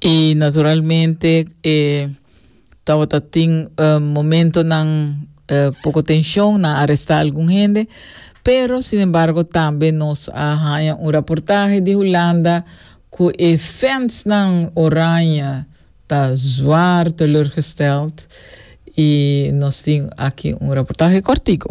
I naturalmente e tabata tin eh, momentonan eh, poko tenshon, nan arestá algun hende, pero sin embargo tambe nos a haña un raportahe di Hulanda ku e fansnan oranje ta zwaar teleurgesteld i nos tin aki un raportahe kòrtiku.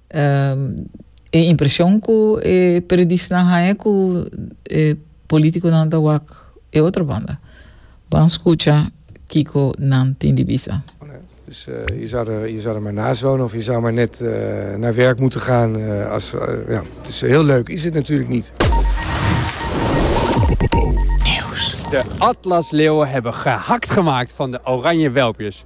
E impresion cu e periodisnan haña cu e politiconan ta wak e otro banda. Ban scucha kico nan tin di bisa. Dus je zou er, je zou er maar naast wonen of je zou maar net naar werk moeten gaan als, ja, dus heel leuk is het natuurlijk niet. De atlasleeuwen hebben gehakt gemaakt van de oranje welpjes.